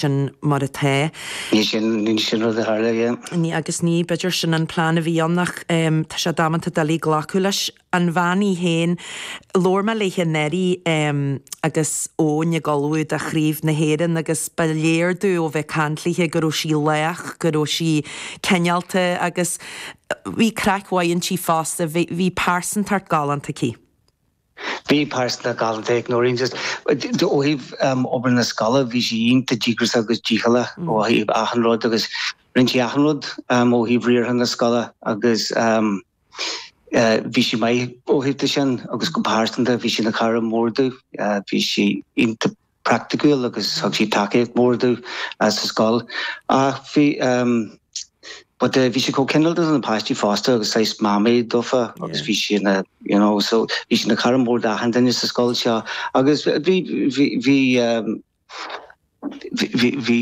sin mar atá. Ní sin an rud a tharla, yeah. Ní agus ní, b'fhéidir sin an plean a bhí ann ach tá sé damanta doiligh glacadh leis an bhean í féin, labhair mé léithe nuair a bhí Eoin ag ullmhú do Chraobh na hÉireann agus ba léir domh ó bheith ag caint léithe go raibh sí lách, go raibh sí cineálta agus bhí craic mhaith inti fosta, bhí pearsantacht galánta aici. Bhí pearsantacht galánta ag Noreen just ó thaobh obair na scoile, bhí sí iontach díograiseach agus dícheallach ó thaobh achan rud agus rinn sí achan rud ó thaobh riartha na scoile agus bhí sí maith ó thaobh de sin agus go pearsanta bhí sí ina cara mór dúinn, bhí sí iontach praiticiúil agus thug sí tacaíocht mhór domh sa scoil. Ach bhí but bhí sí chomh cineálta do na páistí fosta agus saghas mamaí dófa agus bhí sí ina you know so bhí sí ina cara mór d'achan duine sa scoil seo agus bhí bhí bhí bhí bhí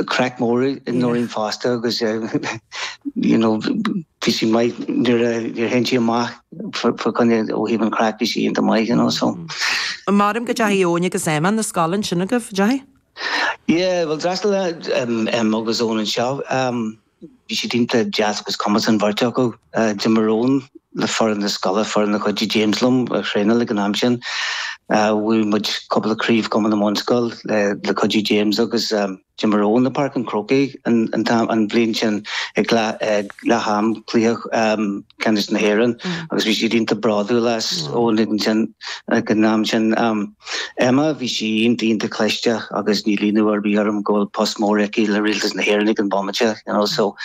craic mór i Noreen fosta agus you know bhí sí maith nuair a théann sinn amach. Fágann ó thaobh an craic bhí sé iontach maith you know so. Measaim go deachaigh Eoin agus Emma 'na scoile ansin agaibh, deachaigh? Yeah bhuel d'fhreastail Emma agus Eoin anseo bhí siad iontach deas agus cumasach an bheirt acu. D'imir Eoin le foireann na scoile, foireann a chuidigh James liom a thraenáil ag an am sin. Bhuaigh muid cúpla craobh Cumann na mBunscol le cuidiú James agus. D'imir Eoin i bPáirc an Chrócaigh an bhliain sin ag leath am cluiche ceannais na hÉireann agus bhí siad iontach bródúil as Eoin ag an am sin. Emma, bhí sí iontach iontach cliste agus níl ionadh ar bith orm go bhfuil post mór aici le Rialtas na hÉireann ag an bhomaite you know so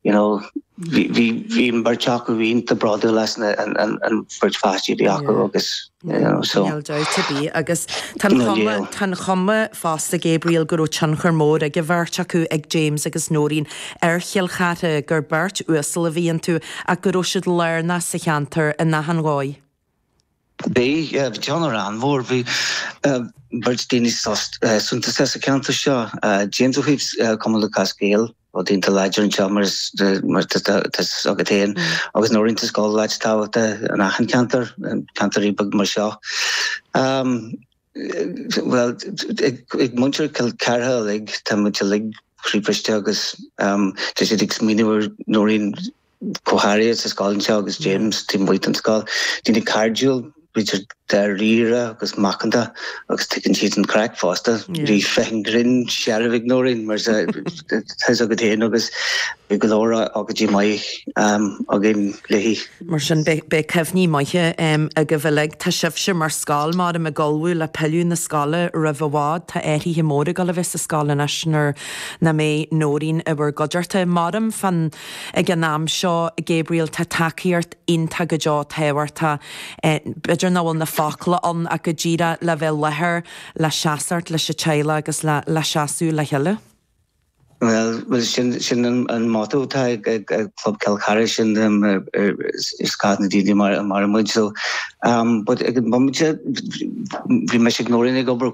you know bhí an bheirt acu iontach bródúil as an bheirt pháistí a bhí acu agus Níl dabht ar bith agus tá an chuma fosta Gabriel go raibh tionchar mór ag an bheirt acu, ag James agus Nóirín, ar Chill Chartha, gur beirt uasal a bhí iontu ach go raibh siad lárnach sa cheantar in achan dhóigh. Bhí tionchar an-mhór, bhí beirt daoine suntasacha sa cheantar seo, James ó thaobh Cumann Lúthchleas Gael, Rud iontach láidir anseo mar tá a fhios agat féin agus Nóirín, tá scoil leithéid tábhacht in achan ceantar, ceantair bheaga mar seo. Bhuel ag muintir Chill Chartha uilig tá muid uilig croíbhriste agus tá siad ag smaoineamh ar Nóirín go háirithe sa scoil anseo agus James taobh amuigh den scoil. Daoine cairdiúil, idir dáiríre agus macánta agus tuigeann siad an chraic fosta. Bhí féith an ghrinn searbh ag Noreen mar atá a fhios agat féin agus bhí go leor ócáidí maithe againn léi. Mar sin beidh cuimhní maithe agaibh uilig. Tá sibhse mar scoil, maram, ag ullmhú le pilleadh 'na scoile roimh i bhfad. Tá athruithe móra ag dul a bheith sa scoil anois nuair nach mbeidh Noreen i bhur gcuideachta. Maram fan. Ag an am seo, Gabriel, tá tacaíocht iontach go deo tábhachtach, b'fhéidir nach bhfuil na focla ann ach go díreach le bheith i láthair, le seasacht leis an teaghlach agus le le seasamh le chéile. Bhuel, bhuel sin, sin an an motto atá ag ag ag Club Cill Charthaigh sin um ar ar ar scáth na daoine mar a maireann muid so um but ag an bomaite bhí mise agus Nóirín ag obair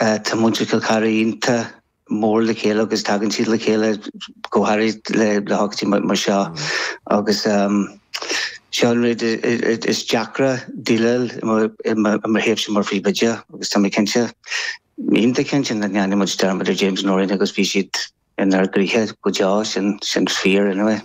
Tá muintir Chill Chartha iontach mór le chéile agus tagann siad le chéile go háirid le hócáidí mar seo agus seo an rud is deacra déileáil i mo thaobhse mar phríomhoide agus tá mé cinnte, iontach cinnte nach ndéanfaidh muid dearmad ar James Noreen agus beidh siad inár gcroíthe go deo, sin fíor anyway.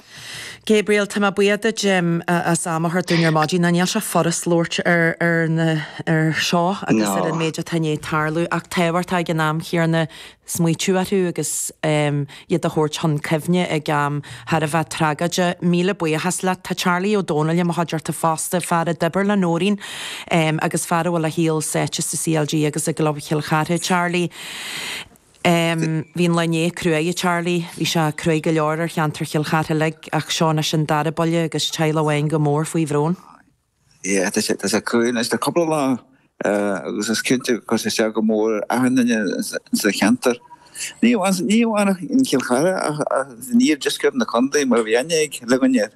Gabriel, Tá mé buíoch duit as am a thabhairt dúinn ar maidin. Nó níl sé furast labhairt ar seo agus ar an méid atá i ndiaidh tarlú ach tábhachtach ag an am chéanna smaoitiú orthu agus iad a thabhairt chun cuimhne ag am thar a bheith tragóideach. Míle buíochas leat. Tá Charlie Ó Dónaill i mo chuideachta fosta, fear a d'oibir le Nóirín agus fear a bhfuil a shaol sáite sa CLG agus i gClub Chill Chartha. Charlie. Bhí an lá inné cruaidh a Charlie. Bhí sé cruaidh go leor ar cheantar Chill Chartha uilig ach seo anois an dara buille agus teaghlach amháin go mór faoi bhrón. Yeah tá sé tá sé cruaidh anois le cúpla lá agus is cinnte gur chuir sé isteach go mór ar achan nduine sa cheantar. Ní amháin ní amháin in Chill Chartha ach in iardheisceart na condae mar bhí aithne ag uilig duine air.